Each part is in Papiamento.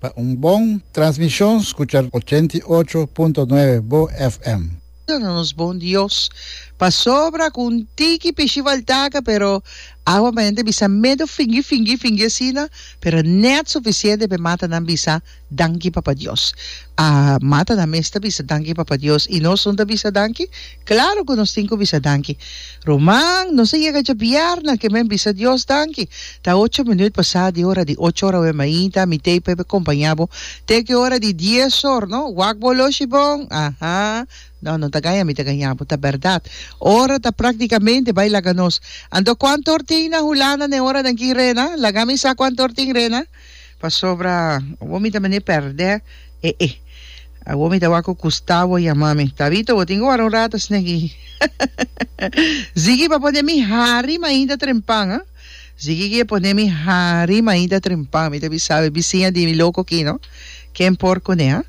Pa un bon transmishon skucha ochenta i ocho punto nuebe Bo FM. Duna nos bon Dios pasobra ku un tiki pishi faltaka pero awa p'ente bisa medu fingi fingi fingi asina pero nèt sufisiente p'e mata nan bisa danki Papa Dios a mata nan mes ta bisa danki Papa Dios i nos nun ta bisa danki Claro cu nos tin cu bisa danki. Ruman, nos a yega dje bièrna, ke men bisa Dios danki. Ta ocho minuut pasá di ora di ocho ora oe mainta, mi tei p'e compañá bo te ke ora di dies or, no? Wak bo loshi bon? Aha! No, no ta gaña mi ta gañá bo. Ta bèrdat. Ora ta practicamente bai laga nos. Anto cuanto or tin na Hulanda n'e oranan ki, Rena? Laga mi sa cuanto or tin, Rena? Pasobra awor mi ta mende pèrdè e e. Awor mi ta wak ku Gustavo yama mi, Tabito, bo tin ku wara un rata snegi? Ziggy, pa pone mi hari mainta trempan, ha? Ziggy ke pone mi hari mainta trempan, mi ta bisa e bisiña di mi loko aki, no? Ken por kuné, ha?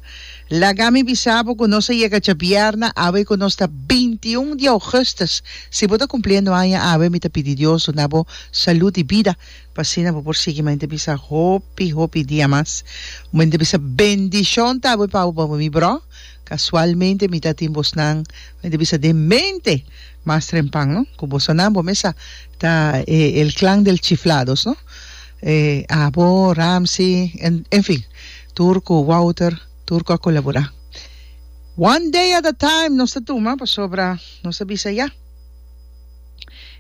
Laga mi bisa bo ku nos a yega djabièrna awe ku nos ta binti i un di ougùstùs. Si bo ta kumpliendo aña awe, mi ta pidi Dios duna bo salú di bida. pa asina bo por sigui mante bisa hopi hopi dia mas mante bisa bendishon ta bo pa bo mi bro kasualmente mi ta tin bosnan mante bisa den mente mas trempan no ku bosonan bo mesa ta e el klan del chiflados no e abo Ramsey en enfin tur ku Wouter tur ku a kolabora one day at a time nos ta tuma pasobra nos ta bisa ya.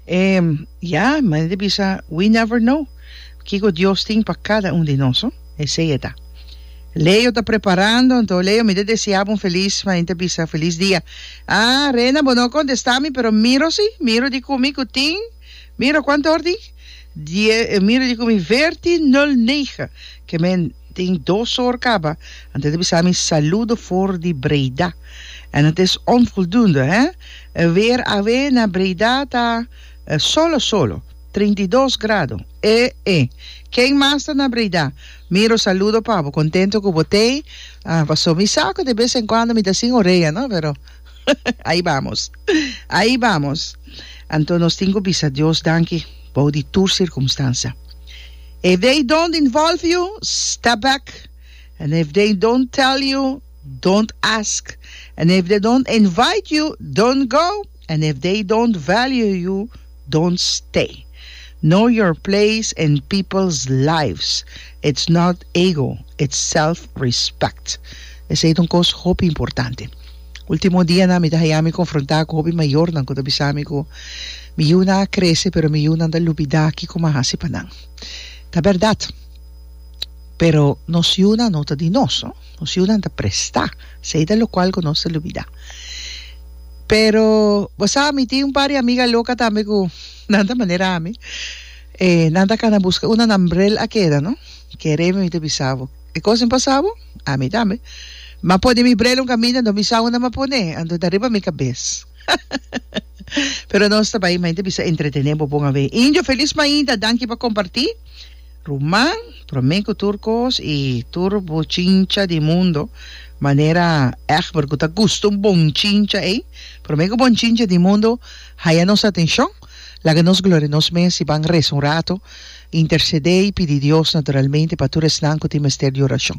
Em, ya, manen di bisa, we never know kiko Dios tin pa kada un di nos, no? Esei e ta. Leo ta preparando, anto Leo, mi ta deseá bo un felis, manen ta bisa, felis dia. Ah, Rena, bo no a kontestá mi, pero miro si, miro di kumi ku tin, miro kuantu hor tin. Die e mira di cu mi verti nul negen ke me tin dos or caba antes de bisa mi saludo for di Breda en het is onvoldoende hè e weer awe na Breda ta solo solo trinta i dos grado e e ken mas ta na Breda miro saludo pa bo contento cu bo tey paso mi sa cu de bes en cuando mi ta sin orea no pero. Ahi bamos! Ahi bamos! Anto nos tin cu bisa Dios danki bou di tur circumstansa. If they don't involve you, step back, and if they don't tell you, don't ask, and if they don't invite you, don't go, and if they don't value you, Don't stay. Know your place in people's lives. It's not ego, it's self respect. Esei ta un kos hopi importante. Ultimo dianan mi ta haya mi konfrontá ku hopi mayornan ku ta bisa mi ku mi yunan a krese pero mi yunan ta lubidá kiko mi a hasi pa nan. Ta bèrdat, pero nos yunan no ta di nos. Nos yunan ta prestá, esei ta lokual ku nos ta lubidá. Pero, bo sa, mi tin un par di amiga loka tambe ku nan ta manera ami. E nan ta kana buska unda nan brel a keda, no? Kere mi ta bisa bo, e kos a pasa bo? Ami tambe. Mi a pone mi brel un kaminda, anto mi sa unda mi a pone, anto ta riba mi kabes. Pero nos ta bai, main ta bisa, entretené bo bon awe. Indio, felis mainta, danki pa kompartí. Ruman, promé ku tur kos i tur bo chincha di mundo manera Egbert ku ta gusta un bon chincha ei, promé ku bon chincha di mundo haya nos atenshon, laga nos gloria nos mes i ban resa un ratu, intersedé i pidi Dios naturalmente pa tur esnan ku tin mester di orashon.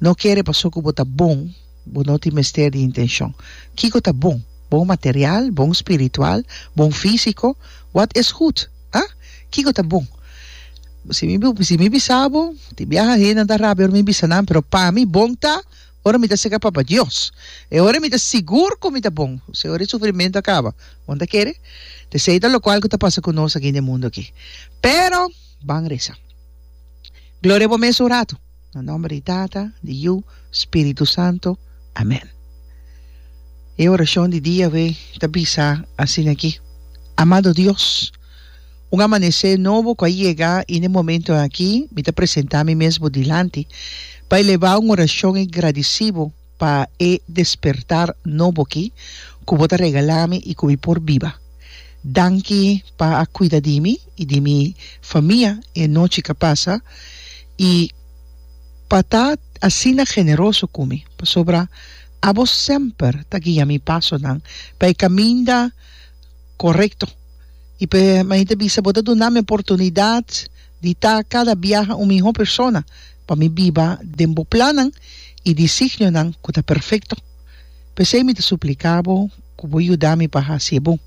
No kere pasó ku bo ta bon. Bo no tin mester di intencion. Kico ta bon? Bon material? Bon spiritual? Bon fisico? Wat is goed? Ha? Kico ta bon? Si mi bo si mi bisabo, tin biaha hende nan ta rabia ora mi bisa nan, pero pa mi bon ta ora mi ta seca Papa Dios. E ora mi ta sigur cu mi ta bon, si ora e sufrimento a caba. Bo no ta kere? Ta esey ta locual cu ta pasa cu nos aki den mundo aki. Pero, ban reza. Gloria bo mes un rato. Na nomber di Tata, di Yu, Spiritu Santo. Amen. E oracion di diawe ta bisa asina aki, Amado Dios, un amanece nobo cu a yega y n'e momento aki mi ta presenta mi mes bo dilanti pa eleva un oracion y gradici bo, Pa e despertar nobo aki ku bo ta regalá mi i ku mi por biba. Danki pa a kuida di mi i di mi famia e nochi ku a pasa i pa ta asina generoso ku mi, pasobra abo semper ta guia mi pasonan pa e kaminda korekto i p'e manera ta bisa bo ta duna mi oportunidat Di ta cada biaha un miho persona pa mi biba den bo plannan y disignionan cu ta perfecto. P'esey mi ta suplica bo cu bo yuda mi pa haci e bon,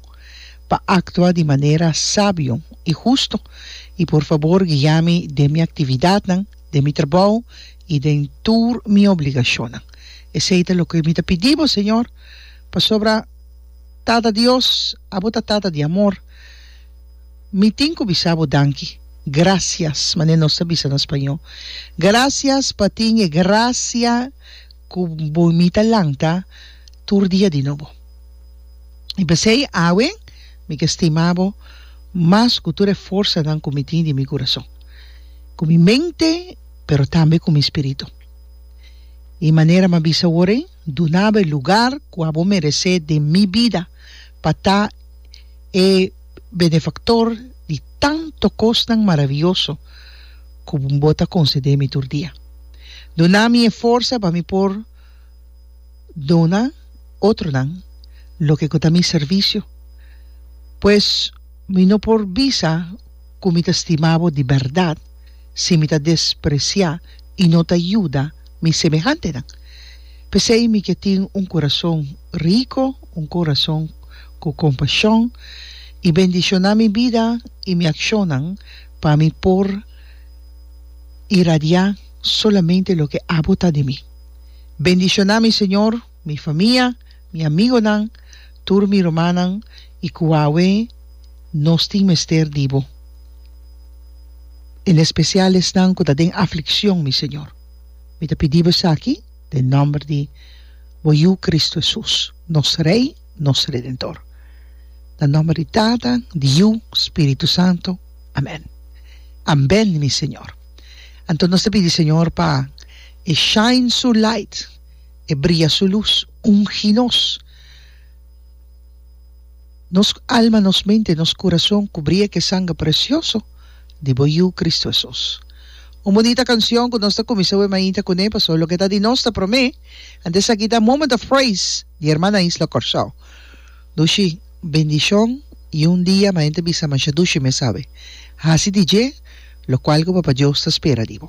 pa actua di manera sabio y husto y por fabor guia mi den mi actividadnan, den mi trabou y den tur mi obligacionnan. Esey ta loke mi ta pidi bo, Señor, pasobra Tata Dios, abo ta Tata di amor. Mi tin ku bisa bo danki. Gracias, manera nos ta bisa na spañó. Gracias pa tin e gracia ku bo i mi ta lanta tur dia di nobo. I p'esei awe mi ke stima bo mas ku tur e forsanan ku mi tin di mi kurason, ku mi mente, pero tambe ku mi spiritu. I manera m'a bisa ora ei, duna bo e lugar ku abo meresé den mi bida pa ta e. benefaktor di tanto kosnan maravioso ku Bo ta konsedé mi tur dia. Duna mi e forsa pa mi por duna otronan loke ku ta mi servisio, pues mi no por bisa ku mi ta stima Bo di bèrdat si mi ta despresiá i no ta yuda mi semehantenan. P'esei mi ke tin un kurason riko, un kurason ku kompashon, i bendishoná mi bida i mi akshonnan pa mi por iradiá solamente loke abo ta di mi. Bendishoná mi, Señor. Mi famia, mi amigonan, tur mi rumannan i ku awe nos tin mester di bo, en espesial esnan ku ta den aflikshon, mi Señor. Mi ta pidi bo esaki den nòmber di bo Yu Kristu Hesus, nos Rei, nos Redentor. Na nòmber di Tata, di Yu, Spiritu Santu. Amèn. Amben, mi Señor. Anto nos ta pidi, Señor, pa E shine Su light. e bria su lus, ungi nos, nos alma, nos mente, nos kurason ku bria ku e sangre presioso di bo Yu, Kristu Hesus. Un bonita kansion ku nos ta kuminsá wema ainta kuné, pasobra loke ta di nos ta promé. Antes aki ta Moment of Praise di Hermana Isla Kòrsou. Dushi, bendishon i un dia mas hende ta bisa, Masha dushi mes awe. Hasi di dje lokual ku Papa Dios ta spera di bo.